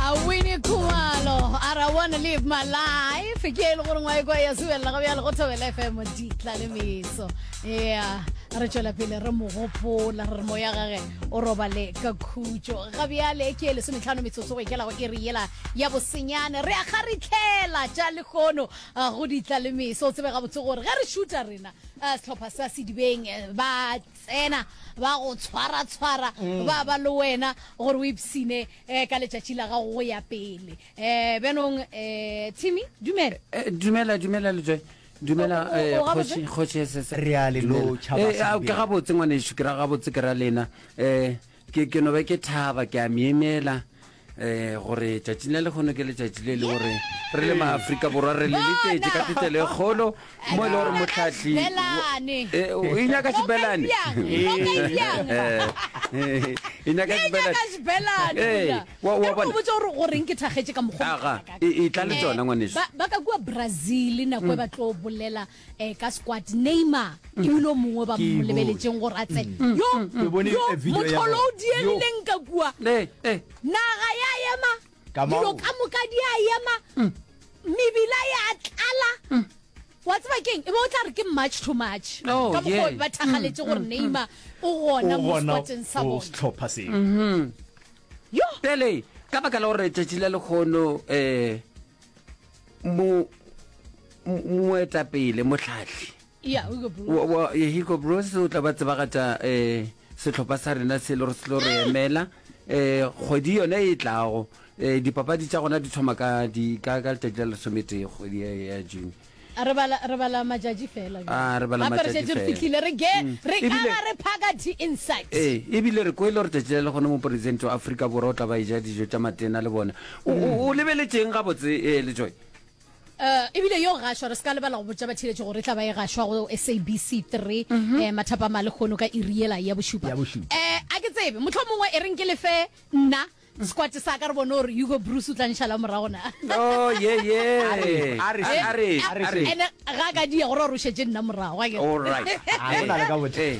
awini khumalo ara wanna live my life ke e le gore ngwa ekwa ya subelela ga bjale go thobela fm ditla le meso ya re tšwela pele re mo gopola re re moya gage o robale ka khutšo ga bjale ke e lesometlhano metsotso go ikela go iri yela ya bosenyane re a kgaritlhela tša lekgono ah, go ditla le meso o tsebe gabotse gore ge re šuta rena ah, sehlopha sa sedibeng eh, ba Tsena, ba go tshwara-tshwara, ba ba le wena gore o ipsine um ka letšatši la gago go ya pele. Um bjanong um Timmy, dumela. Eh, dumela dumela lejoe dumela O- o- eh, o gabotse? kgoši kgoši SS Re a le Dumela. lotšha Eh, ah, basadi. ke gabotse ngwanešu ke ra gabotse ke ra lena um Ke, ke no be ke thaba, ke a myemyela um gore tšatšing la lekgono ke letšatši le le gore re le maafrika borwa re le letšetše ka thetelo e kgolo mo e le gore motlhahli Belane. Eh, o e nyaka sebelane Bjang, lo ka e bjang. Eh, e nyaka Ye sebelane. nyaka sebelane, Eh, Bulla. wa- wa Ke re bona. ko botse gore goreng ke thakgetše ka mokgwa o Aga, mokana ka. e- e tla le Eh, tšona, ngwaneso. ba- ba ka kua brazil nako e ba tlo bolela eh ka squad Neymar ke mm. ulo mongwe ba mo lebeletšeng gore a tsene mm. yo mm. yo motholo o diegileng ka kua naga ya ema dilo ka moka di a ema mebila ya tlala wa tseba keng e be o tla re ke march to march oh, ka mokgwa ba thagaletse gore Neymar o gona mo squadeng sa bona setlhopha se mm-hmm. yo pele ka baka la gore tšatši la lekgono um moetapele motlhatlhi ya hugo bros o tla ba tsebagatša um eh, setlhopha sa rena se le gore se lo re emela um kgwedi yone e tlago um dipapadi tša gona di thoma ka letšatši la lesometee kgwedi ya june re bala re bala majatši fela ah re bala majatši fela re fitlile re ge mm. re ka ba re phaka di insight eh e bile re koile re tšetšile le gone mo president wa Afrika borwa o tla ba e ja dijo tša matena le bona O- o o lebeletšeng gabotse eh, lejoy Uh, ebile yo gašwa re se ka lebala go botša batheeletši gore e tla ba e gašwa go sabc 3 mm eh, mathapama le kgono ka iri yela ya bošupa Mhm. Ya bošupa. eh, a ke tsebe motlho mongwe e reng ke lefe nna sekwate sa ka re bone gore hugo bruce o tla nšhala morago na o ye ye re- a re- Eh, a re- a re- a re- ene ga ka dia gore o rošetse nna morago akere? All right. A go na le ka bothata. Eh,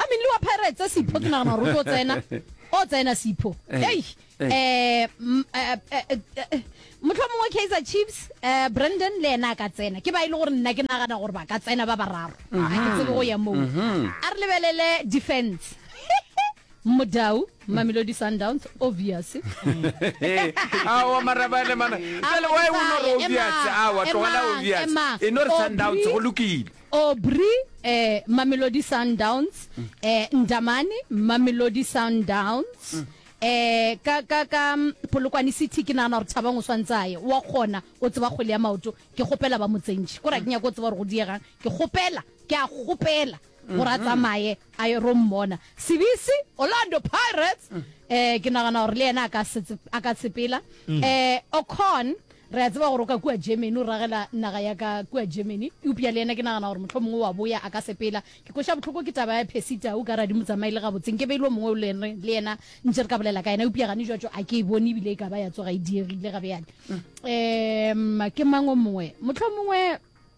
I mean le wa pirates Sipho ke nagana gore o tlo tsena o tsena Sipho eh, hey eh. eh mm, eh, eh motlho mongwe Kaizer Chiefs eh Brandon le ena ka tsena ke ba ile e gore nna ke nagana gore ba ka tsena ba bararo a ke mhm. tsebe go ya moo mhm. a re lebelele defense modau mamelodi sundowns obvious awa marabane mana jale wa e o nore obvious awa tlogela obvious e nore sundowns go lokile Aubrey, eh, Mamelodi Sundowns, eh, Ndamane, Mamelodi Sundowns, eh, ka, ka, ka mm, Polokwane City ke nagana gore Thabang o swantse a ye wa kgona o tseba kgwele ya maoto ke kgopela ba motsentšhe kore a ke nyako o tseba gore go diegang ke kgopela ke a kgopela gore a tsamaye a ye ro mmona sebisi orlando pirates eh ke nagana gore le yena a ka setse- a ka sepela eh ocon Re a tseba gore o ka kua Germany, o ragela naga ya ka kua Germany. Eupša le yena ke nagana gore mohlomongwe o a boya, a ka sepela. Ke kweša bohloko ke taba ya Percy Tau ka radimutsamayi, le gabotse nke be e le o mongwe o le re le yena ntše re ka bolela ka yena. Eupša gane joatšo a ke e bone, e bile e ka ba ya tsoga e diegile ga bjale. Um, ke mang o mongwe? Mohlomongwe.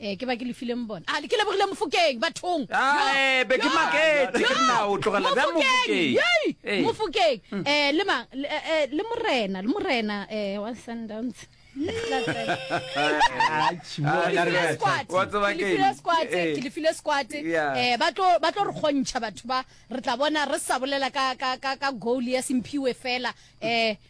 Eh, ke ba ke lefileng bona a ah, ke lebogile mofokeng bathong eh, mofokeng um eh, le mang le morena le morena um wa sundowns ke lefile squate um ba tlo re kgontšha batho ba re tla bona re sa bolela ka goal ya semphiwe fela um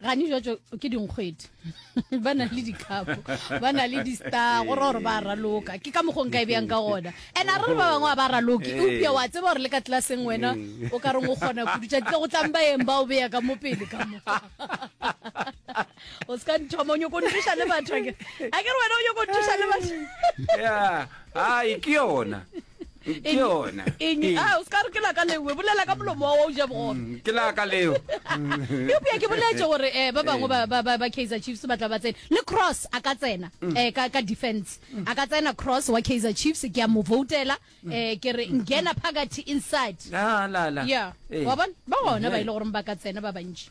gane jwatso ke dinkgwedi ba na le dikhapo ba na le di-star go ra gore ba raloka ke ka mokgong ka e bjang ka gona and a re re ba bangwe a ba raloke eupša wa tseba gore le ka tlelaseng wena o ka reng o kgona kudutša tle go tlang ba eng ba o beya ka mo pele ka mo o se ka nthoma o nyoko nthuša le batho a ke re wena o nyoko nthuša le batho ai ke yona ke yona eng Ee. a o ska re ke laka leo we bolela ka molomo wa wa o ja bogoro Mm, ke la ka leo eupša ke boletse gore um ba bangwe ba- ba- ba ba kaizer chiefs ba tla ba tsena le cross a ka tsena um ka ka defense a ka tsena cross wa kaizer chiefs ke a mo votela um ke re ngena phakathi inside Ah, la, la. ya Ee. wa bona ba gona ba e le goreng ba ka tsena ba bantši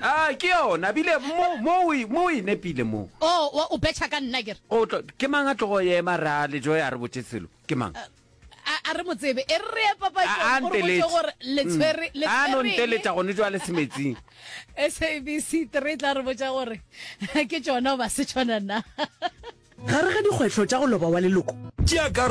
Ah, ke yona bile mo o e nepile mo oh, o betšha ka nna kere ke mang a tlogo ema ra lejo ya re botse selo ke mang eh, a re motsebe e re ye papatore letshwere mm. a no nteletša gone jwa le semetsing sabc three tla re botsa gore ke tsona ba se tshwana na gare ga dikgwetlho tša go loba wa leloko